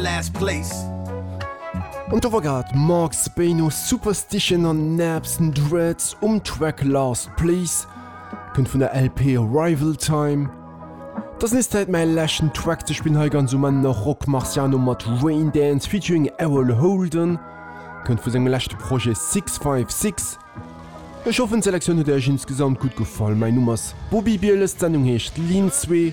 last place. An do war grad Marc Spain no Superstition an Naps and Dreads um Track Last Place, kënnt vun der LP Arrival Time. Et ass nees Zäit mäi leschten Track ze spillen, hei ganz um Enn nach Rock Marciano mat Rain Dance featuring Erol Holden, kënnt vu sengem leschte Projet Six Five Six. Ech hoffen d'Selektioun huet Iech insgesamt gutt gefall, mäi Numm ass Bobby Bieles, d'Sendung heescht Lean Zwee.